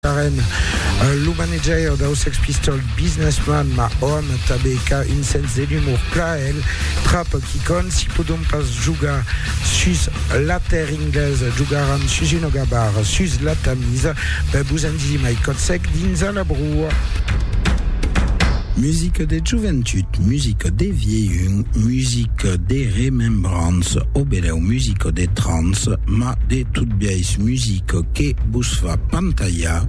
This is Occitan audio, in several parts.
Karen, lo manajaire dau Sex Pistols Business Man, ma òm, tanben qu'a un sens de l'umor pla el, trap quicòm, si podon pas jogar sus la terre inglesa, jogaram sus una gabara sus la Tamisa, ben vos en disi mai còt sec dins a la broa. Musica de joventut, musica de vielhun, musica de remembrança, o benèu musica de trans, ma de totbiais musica. Çò que vos fa pantalhar,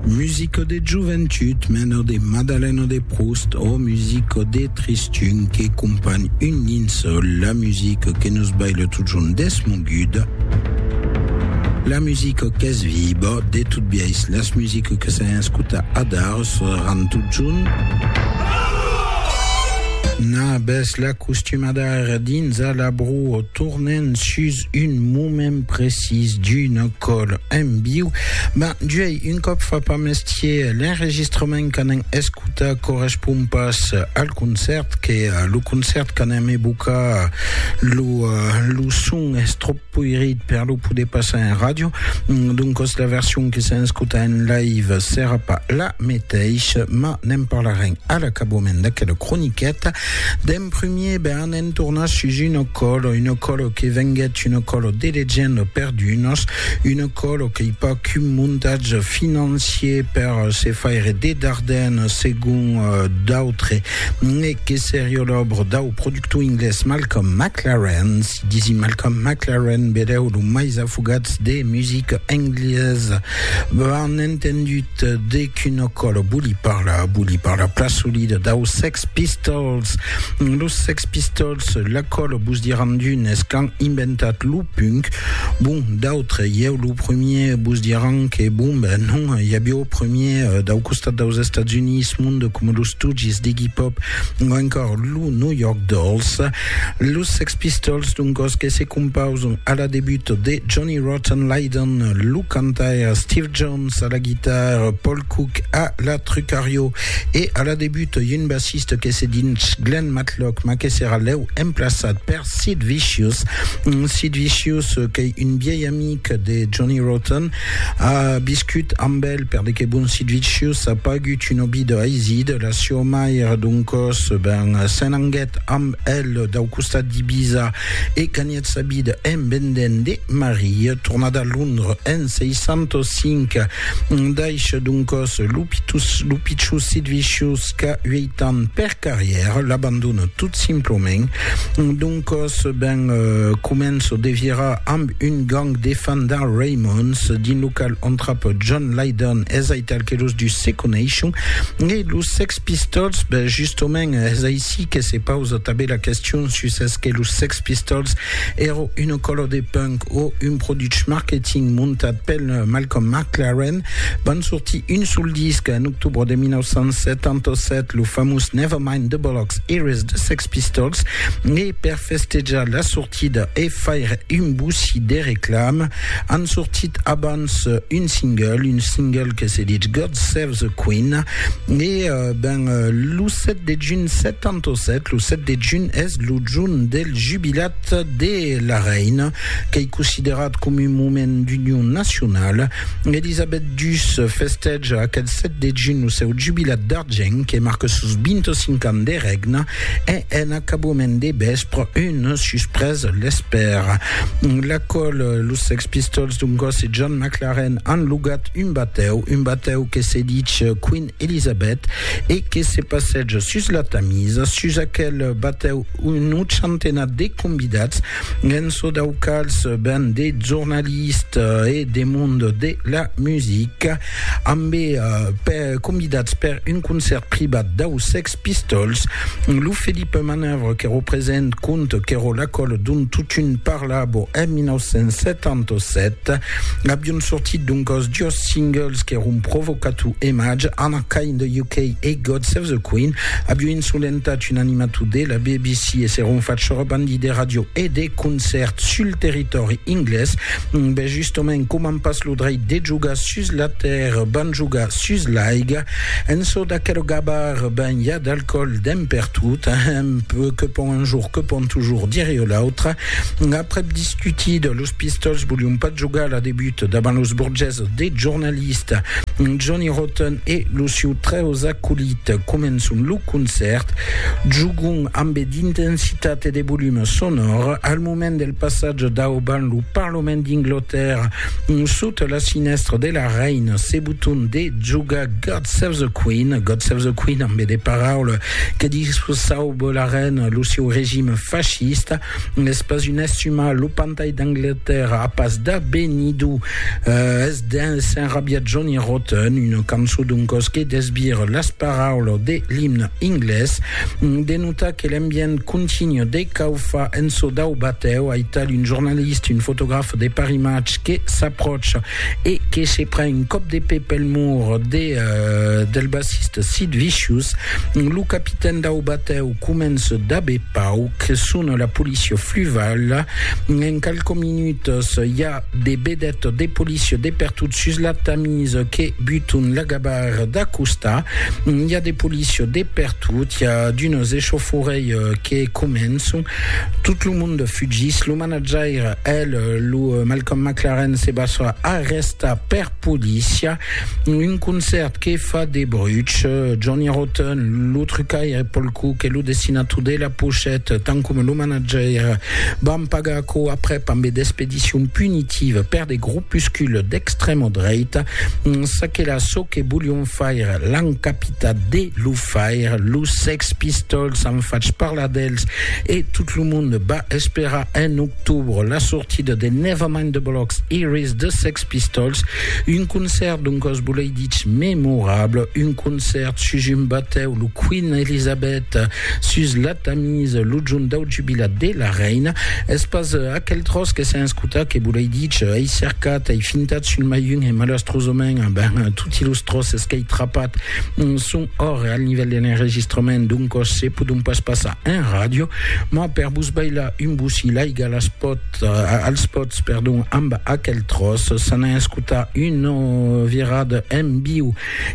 Musico de joventut, mena de Madalen o de Proust, o Musico de tristun que companh un linçòl, la musico que nos baila totjorn desmoguda, la musico qu'es viba, de tot biais las musico que s'an escotat adar seràn totjorn. Nabes la costumada ara dins a la broa, tornent sus un moment precís d'una còl en viu, ben juei un còp fa pas mestier, l'enregistrament qu'anem escutar correspond pas al concèrt, que lo concèrt qu'anem evocar lo, lo son es tròp poirit per lo poder passar en ràdio, doncas la version que s'en escuta en live serà pas la meteissa, mas ne'n parlarem a l'acabament d'aquela croniqueta. D'en primier, ben, Ne'n torna sus una còlo, una còlo que venguèt una còlo de legenda per d'unos, una còlo qu'ei pas qu'un montatge financier per se faire de darden segon d'autres, ne que seriá l'òbra dau productor inglés Malcolm McLaren, si disi Malcolm McLaren, belèu lo mais afogats de musica englesa, ben entendut. De quina cosa vòli parlar? Vòli parlar plan solida daus Sex Pistols. Los Sex Pistols, la cosa vos diràn d'unes qu'an inventat lo punk, bon, d'autres, ieu lo premier, vos diràn que bon ben non, i aviá o premier dau costat daus Estats Units monde coma los Stooges d'Iggy Pop o encòr lo New York Dolls. Los Sex Pistols d'un còs que se compausan a la debut de Johnny Rotten Lydon, lo cantaire Steve Jones, Jones a la guitarra, Paul Cook a la trucario e a la debut un bassista que se dins Glenn Matlock ma que serà lèu emplaçat per Sid Vicious. Sid Vicious qu'ei un viei amic de Johnny Rotten, a viscut amb el per de que bon Sid Vicious a pagut un òbi de Haizid, la sieu mair doncòs ben s'enanguèt amb el dau costat d'Ibiza e ganhèt Sa vida en vendent de Maria, tornada a Londres en 605, daisha d'un còs lo pichus sit vicius qu'a uèit ans per carrièra, l'abandona tot simplament, d'un còs ben comença de virar amb un gang de fans d'en Raymonds, dins lo qual entrapa John Lydon, es aital que los dus se coneishon, e los Sex Pistols, ben justament es aicí que se pausa tanben la question sus es que los Sex Pistols èra una còla de punk o un produch marketing montat pel Malcolm McLaren. Van sortir un sol disc en octobre de 1977, lo famós Never Mind the Bollocks Here's the Sex Pistols, e per festejar la sortida e faire un boussi de reclama, an sortit abans un single, un single que se ditz God Save the Queen, e ben lo 7 de junh 77, lo 7 de junh es lo jorn del jubilat de la reina, qu'ei considerat coma un moment d'union nacionala. Elisabet ii festèja aquel 7 de junh lo seu jubilat d'argent que marca sos 25 ans de règna e en acabament de vèspre un susprés l'espèra. L'acòl los Sex Pistols d'un còs e John McLaren an logat un batèu, un batèu que se dich Queen Elisabet, e que se passètz sus la Tamisa, sus aquel batèu un ochantenat de convidats, en çò dau quals ben de jornalistes e de mond de la musica, ambe convidats per un concèrt privat dau Sex Pistols, lo Felipe Manœuvre que represent cont qu'èro l'acòl d'un totun par Collabo en 1977, avion sortit doncòs dos singles qu'èron Provocato e Madge, Anna Kay in the UK e God Save the Queen. Avion insolentat un animator de la BBC e s'èron fach sorabandi de ràdio e de concèrts sul territòri inglés. Ben justament, coma an pas lo dreit de jogar sus la tèrra, van jogar sus l'aiga. En çò d'aquel gabar, ben i a d'alcoòl, d'en pertot, ehm, que pònt un jour. Que pon toujours dire io l'autre. Aprèp discutida, los Pistols volion pas jogar la debut davant los burgeses de jornalista Johnny Rotten e lo siu trèus acolit. Començon lo concèrt, jogon ambe d'intensitat e de volume sonor. Al moment del passatge daubant lo Parlament d'Inglotèrra, sota la sinèstra de la Reina, se boton de jogar God Save the Queen, God Save the Queen ambe de paraules Que discursaubo la rèna, lo sieu regime fascista n'es pas un estumar, lo pantai d'Anglatèrra a pas d'abenido, es dens s'enrabiat Johnny Rotten, una cançon d'un còs que desvire las paraulas de l'imne inglés, de notar que l'ambient continu de caufa en çò dau batèu, aital un jornalista, un fotograf de Paris Match que s'apròcha e que se pren un còp de pè pel mur de del bassista Sid Vicious, lo capitèn dau batèu comença d'aver pau que sona la polícia fluvala, en qualques minutas i a de vedètas de polícia de pertot sus la Tamis que buton la gabarra d'acostar, i a de polícia de pertot, i a d'unes echauforeilhs que començan, tot lo monde fugís, lo Manajaire, el, lo Malcolm McLaren se basa a resta per polícia. Un concèrt que fa de bruch. Johnny Rotten, lo trucaire Paul Cook e lo dessinator de la pochette, tant coma lo manajaire, van pagar aquò aprèp ambe d'expedicion punitiva per de gropuscules d'extrèma dreita. Çaquelà çò que volion faire, l'an capitat de lo faire. Los Sex Pistols an fach parlar d'els e tot lo monde va Espèra en octobre la sortida de Nevermind the Bollocks Iris de Sex Pistols, un concèrt d'un còs bolei dich memorable, un concèrt sus un batèu, lo Queen Elizabeth, sus la Tamise, lo jorn dau jubilat de la reina. Es pas aquel tròç que sèn escotat que bolei dich, ei cercat, ei fintat sul maiun e malastrosament, ben, toti los tròces qu'ei trapat son òrre al nivèl de l'enregistrament d'un còs se podon pas passar en ràdio. Moi per vos bailar un bossí l'aiga las pot, als pots perdon amb aquel tròç s'an a escotar una virada en viu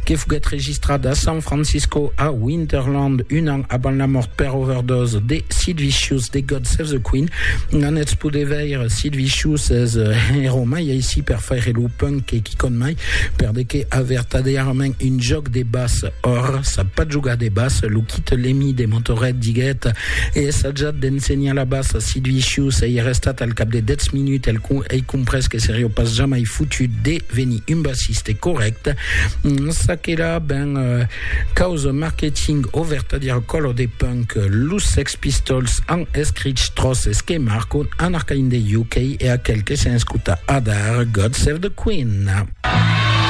que foguèt registrat a San Francisco a Winterland un an avant la mort per overdose de Sid Vicious de God Save the Queen n'anètz poder veire Sid Vicious es hero mai aicí per faire lo punk que quicòm mai per de que a vertadièrament un jòc de basse Or, sap pas jogar de bassa, lo quite Lemi de Montoret diguèt, e essajat d'ensenhar la bassa, si Duicius ei arrestat al cap de dètz minuts, el ei comprés que serió pas jamai fotut de venir un bassiste corrècte. Ça que la ben causa marketing o vertadièr color de punk, los Sex Pistols an escrich tròces que marcon un arcaïn de UK e aquel que se'n escuta adar God Save the Queen.